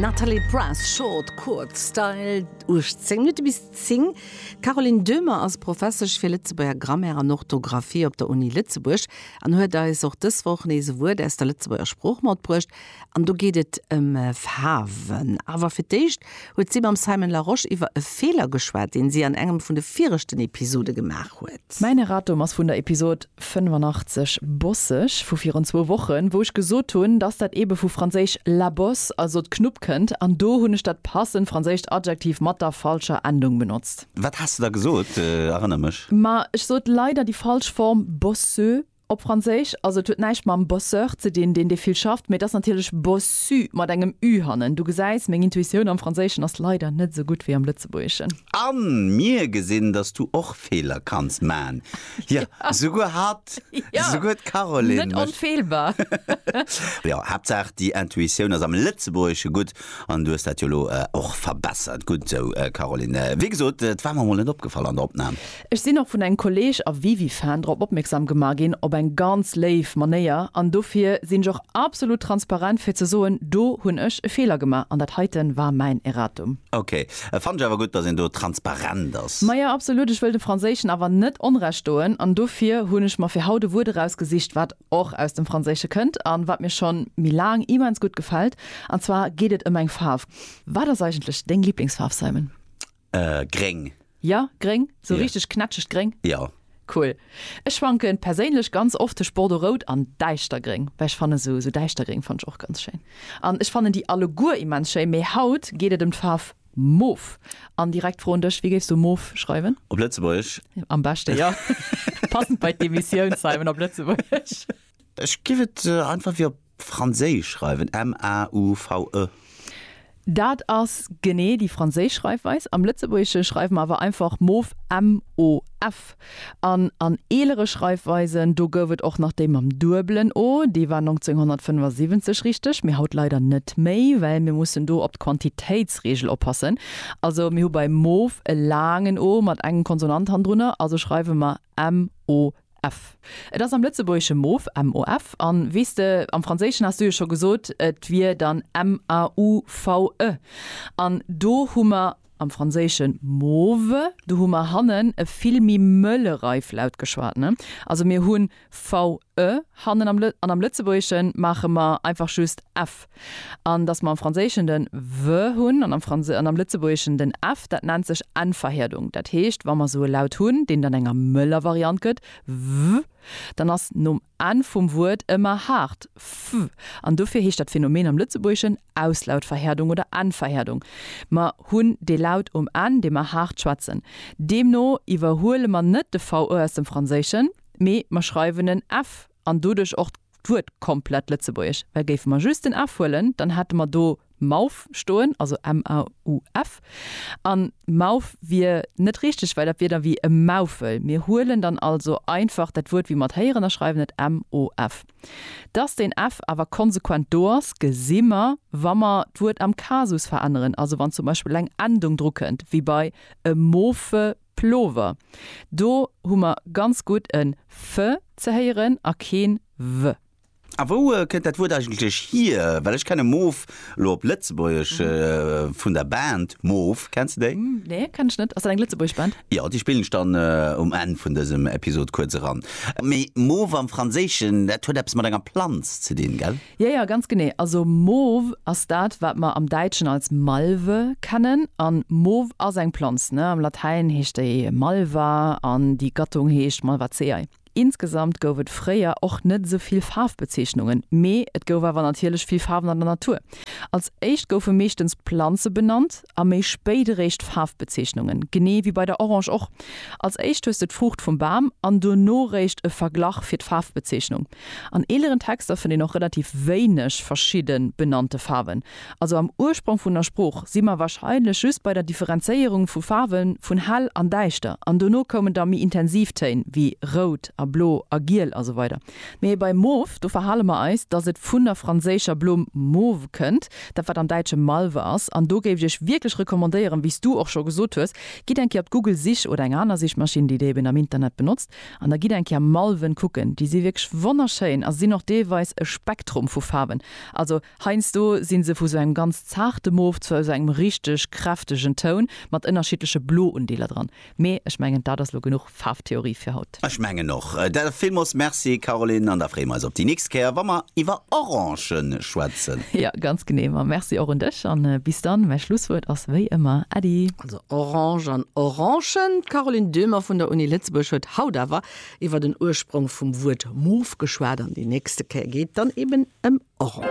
Nathalie Press, Short, Kuerz, Style, 18 Minutte bis 10. D'Caroline Döhmer ass Professesch fir Lëtzebuerger Grammaire an Orthografie op der Uni Lëtzebuerg an huet eis och dës Woch nees e Wuert aus der Lëtzebuerger Sprooch matbruecht. An do geet et ëm Faarwen. Awer fir d'éischt huet si mam Simon Larosche iwwer e Feeler geschwat, deen si an engem vun de viregten Episode gemaach huet. Mäin Erratum ass vun der Episode 85, Bosseg, vu virun zwou Wochen, wou ech gesot hunn, dass dat eebe vu franséisch la bosse, also d'Knupp, kënnt, an do hunn ech dat passend franséischt Adjektiv mat der falscher Endung benotzt. Wat has de da gesot? Erënner mech. Ma ech sot leider déi falsch Form bosseux, Op Franséisch, also et huet näischt mam Bosseur ze dinn, deen dee vill schafft, mee et ass natierlech bossu mat engem ü hannen. Du gesäis, meng Intuitioun am Franséischen ass leider net esou gutt wéi am Lëtzebuergeschen. A mir gesinn, dass du och Feeler kanns man. Jo, souguer hatt. Jo, Souguer d'Caroline net mécht. onfeelbar. Jo, Haaptsaach déi Intuitioun ass am Lëtzebuergesche gutt an du hues dat jo elo och verbessert. Gutt esou, Caroline. Wéi gesot, et war mer emol net opgefall an der Opnam. Ech sinn och vun engem Kolleg a Wiwi-Fan drop opmierksam gemaach ginn, op eng ganz léif Manéier, an dofir sinn ech och absolut transparent fir ze soen, do hunn ech e Feeler gemaach an dat heiten war mäin Erratum. Ok, et fannen ech awer gutt, dass een do transparent ass. Maja, absolut, ech wëll de Franséischen awer net Onrecht doen an dofir hunn ech mer fir haut e Wuert erausgesicht, wat och aus dem Franséische kënnt an wat mir schonn méi laang immens gutt gefält, an zwar geet et ëm eng Faarf. Wat ass eigentlech deng Liblingsfaarf, Simon? Gréng. Ja, gréng, sou richteg knätschegt gréng? Jo. Cool. Ech schwanken perséinlech ganz oft tëscht bordeaux-rout an däischtergréng, well ech fannen esou, sou däischtergréng fannen ech och ganz schéin. An ech fannen déi alleguer immens schéin, mee haut geet et ëm d'Faarf mof. An direkt d'Fro un dech, wéi géifs du mof schreiwen? Op Lëtzebuergesch? Am beschte jo. Passend bei d'Emissioun, Simon, op Lëtzebuergesch. Ech géif et einfach wéi op Franséisch schreiwen m-a-u-v-e. Dat ass genee déi franséisch Schreifweis. Am Lëtzebuergesche schreiwe mer awer einfach mof, m-o-f. An an eelere Schreifweisen, do gouf et och nach déi mam duebelen o, déi war 1975 richteg, mee haut leider net méi, well mir mussen do op d'Quantitéitsreegel oppassen. Also mir hu bei mof e laangen o mat engem Konsonant hannendrunner, also schreiwe mer MOF. Et ass am Lëtzebuergesche Mof, MOF, an weess de, am Franséischen has du jo scho gesot, et wier dann MAUVE. An do hu mer am Franséischen mauve, do hu mer hannen e vill méi mëlle Reiflaut geschwat, ne? Also mir hu VE. e hannen am le an am Lëtzebuergeschen maache mer einfach just ef. An dass mer am Franséischen den w hunn an am Franse an am Lëtzebuergeschen den ef, dat nennt sech N-Verhierdung. Dat heescht, wa mer sou e Laut hunn, deen dann enger mëller Variant gëtt, w, dann ass nom N vum Wuert ëmmer haart f. An dofir heescht dat Phänomen am Lëtzebuergeschen Auslautverhierdung oder N-Verhierdung. Mer hunn dee Laut um N, dee mer haart schwätzen. Deemno iwwerhuele mer net de v aus dem Franséischen. mee mer schreiwen en f an doduerch och d'Wuert komplett lëtzebuergesch. Well géife mer just den f huelen, dann hätte mer do mauf stoen, also m-a-u-f, a mauf wier net richteg, well dat wier da wéi e Maufel. Mir huelen dann also einfach dat Wuert wéi mer et héieren a schreiwen et m-o-f. Dass den f awer konsequent do ass, gesi mer, wa mer d'Wuert am Kasus veränneren, also wann zum Beispill eng Endung drukënnt, wéi bei e mofe, Plover. Do hu mer ganz gutt en f ze héieren a keen w. A wou kënnt dat Wuert eigentlech hier? Well ech kenne Moof elo op Lëtzebuergesch vun der Band Moof. Kenns de déi? Nee, kennen ech net. Ass dat eng lëtzebuergesch Band? Jo, déi spillen ech dann um Enn vun dësem Episod kuerz eran. Mee Moof am Franséischen, dat huet eppes mat enger Planz ze dinn, gell? Jo, jo, ganz genee. Also Mauve ass dat, wat mer am Däitschen als Malve kennen. An Mauve ass eng Planz, ne? Am Latäin heescht déi Malva an déi Gattung heescht Malvaceae. Insgesamt gouf et fréier och net esou vill Faarfbezeechnungen, mee et gouf awer natierlech vill Faarwen an der Natur. Als éischt goufe meeschtens Planze benannt. a méi spéit eréischt d'Faarfbezeechnungen, genee wéi bei der Orange och. Als éischt hues de d'Fruucht vum Bam an dono eréischt e Verglach fir d'Faarfbezeechnung. An eeleren Texter fënnt een och relativ wéineg verschidde benannte Faarwen. Also am Ursprong vun der Sprooch si mer warscheinlech just bei der Differenzéierung vu Faarwe vun hell an däischter an dono koumen da méi intensiv Téin wéi rout a blo a giel a sou weider. Mee bei Mauve, do verhale mer eis, dass et vun der franséischer Blumm mauve kënnt, dat wat am Däitsche Malve ass. An do géif ech iech wierklech recommandéieren, wéi s du och scho gesot hues, gitt eng Kéier op d'Google Sich oder eng aner Sichmaschinn, déi dir eben am Internet benotzt, an da gitt eng Kéier Malven kucken. Déi si wierklech wonnerschéin a sinn och deelweis e Spektrum vu Faarwen. Also heiansdo si se vu sou engem ganz zaarte Mauve zu sou engem richteg kräftegen Toun mat ënnerschiddleche Bloundeeler dran. Mee ech mengen dat ass lo genuch Faarftheorie fir haut. Ech mengen och. Da villmols merci Caroline an da freeë mer eis op déi nächst Kéier wa mer iwwer Orangen schwätzen. Jo, ganz genee. Ma merci och un dech an bis dann. Mäi Schlusswuert ass wéi ëmmer Äddi. Also Orange an Orangen. D'Caroline Döhmer vun der Uni Lëtzebuerg huet haut awer iwwer den Ursprong vum Wuert Moof geschwat an déi nächste Kéier geet et dann eben ëm Orangen.